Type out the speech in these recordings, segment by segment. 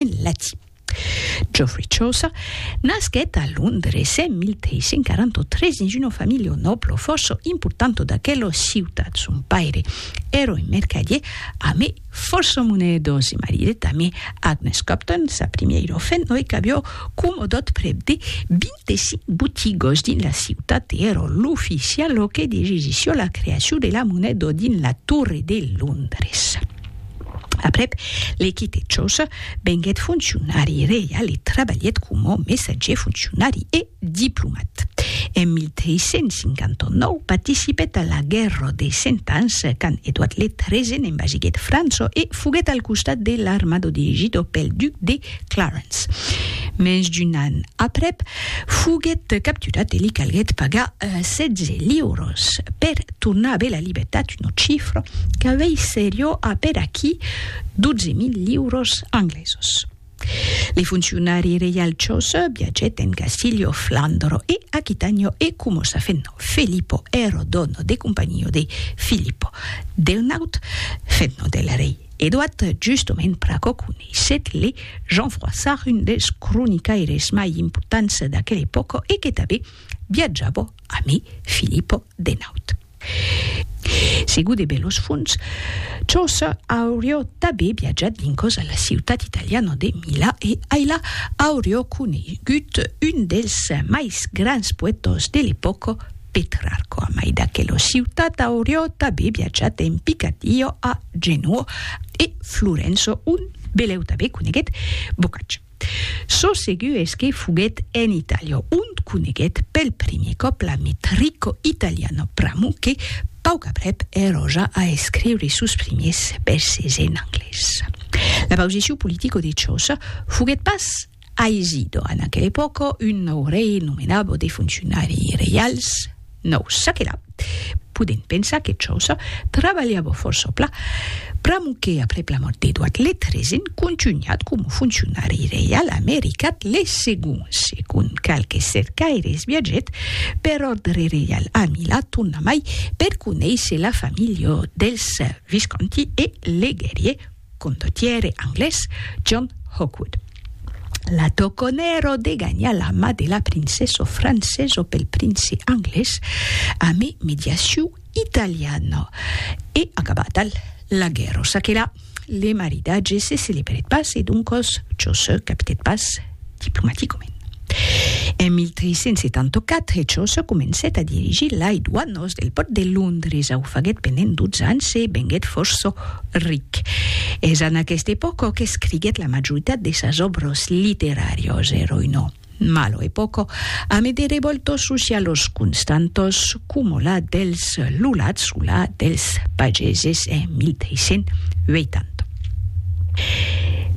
en latin. Geoffrey Chaucer nasquèt a Londres en 1343 dins una familha o nòblo fòrça importanta d'aquela ciutat. Son paire èra un mercadier amé fòrça monedos e maridèt amé Agnes Copton, sa primièira fen, e qu'aviá comodat prèp de 25 botigas dins la ciutat e èra l'oficial que dirigissiá la creacion de la moneda dins la Torre de Londres. Aprèp le quite Chos, venguèt foncionari reial e trabalhèt coma messatger, foncionari e diplomat. En 1359 participèt a la Guèrra dei Cent Ans, quand Edouard le Treisen envasiguèt França e foguèt al costat de l'armada dirigida pel duc de Clarence. Mens d'un an aprèp, foguèt capturat e li calguèt pagar 16 liuras per tornar a aver la libertat una chifra que vei seriò a per aquí 12.000 liuros anglesos. Li funcionari reialchos viageten Casilio, Flandro e Aquitanio e como sa fenno Felipo ero dono de compagnia de Filippo del Naut, fenno del rei Eduard, justoment pr'aquò coneisset le Jean Froissart un dels cronicaires mai importants d'aquel epòca e que tanben viatjava Ami Filippo de naut. Segur de belos fons, Chaucer aurió tabé viatjat vincos a la ciutat italiana de Mila e ailà aurió conegut un dels mais grans poètas de l'epòca, Petrarco. A mai d'aquela ciutat aurió tabé viatjat en Picardia a Genoa e Florença ont beleu tabé coneguèt Boccaccio. Çò segur es que foguèt en Itàlia ont coneguèt pel primier còp l'amic Ricco Italiano Pramo que, pauc aprèp, eroja a escriure sos primiers vèrses en anglés. La pausicion politico-dechosa foguèt pas aisida en aquela epòca, un nòu rei nomenava de foncionari reials, Nos, ça que là, podem pensar que Chaucer trabalhava fòrça pla, pr'amor que aprèp la mòrt d'Edward le Tresen contunhat coma foncionari reial americat le Segon, segon qualques cercaires viatgèt per òrdre reial a Milà tornamai per conéisser la familha dels Visconti e leguèrie Condottiere anglés John Hawkwood. La toconèro de ganhar la mà de la princèso francèso pel prince anglés ame mediaciu italiana. E acabata la guèrra. Çaquelà, le maridatge se celebrèt pas e doncas çò se capitèt pas. diplomaticament. En 1374, Chaucer comencèt a dirigir lai doanos del pòrt de Londres, au faguèt pendent 12 ans e venguèt fòrça ric. Es en aquesta epòca qu'escriguèt la majoritat de sas òbras literàrias, eròi no, malo epòca, amé de revòltas socialas constantas, coma la dels lulats o la dels pageses en 1380.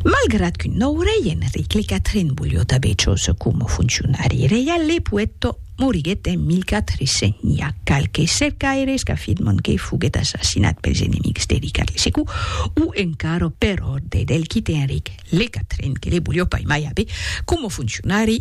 Malgrat qu'un nòu rei, Enric le Quatren, volió tanben Chos coma foncionari reial, le poèt moriguèt en 1400. N'i a qualques cercaires qu'afirman que foguèt assassinat pels enemics de Ricard le Secu o encara per òrdre del quite Enric le Quatren que le volió paimai aver coma foncionari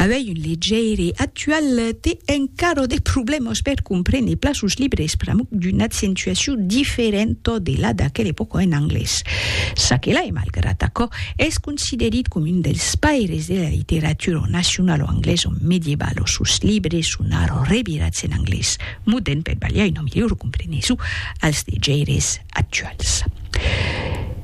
Avei un legèire actual te encaro de problèmas per comprene pla sos libres pr'amuc d'una accentuacion diferenta de la d'aquela epòca en anglés. Ça que la e malgrat aquò, es considerit com un dels paires de la literatura nacionala anglesa medievalo. Sos libres son ara revirats en anglés modèrn per balhar una milhora compreneson als legèires. actuals.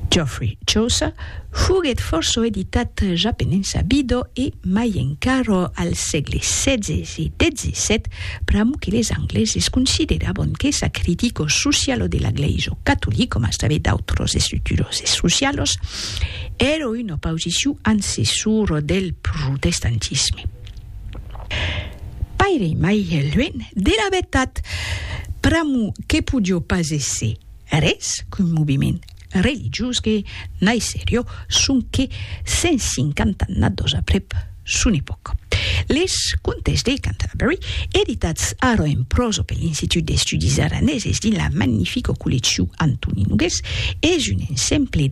Geoffrey Chaucer foguèt fòrça editat ja penença vido e mai encara al sègle xvi e xvii, pr'amor que les angleses considerabon que sa critico socialo de la glèisa catolic, coma sabe d'autros estructuroses socialos, èra una pausiciu ancessor del protestantisme. Paire mai luenh de la vertat, pr'amor que podió pas èsser res qu'un moviment religiós que naisserió sonque 150 annadós aprèp son epòca. Les Contes de Canterbury, editats ara en pròsa per l'Institut d'Estudis Araneses dins la magnifica colleccion Antoni Nogués, es un ensemble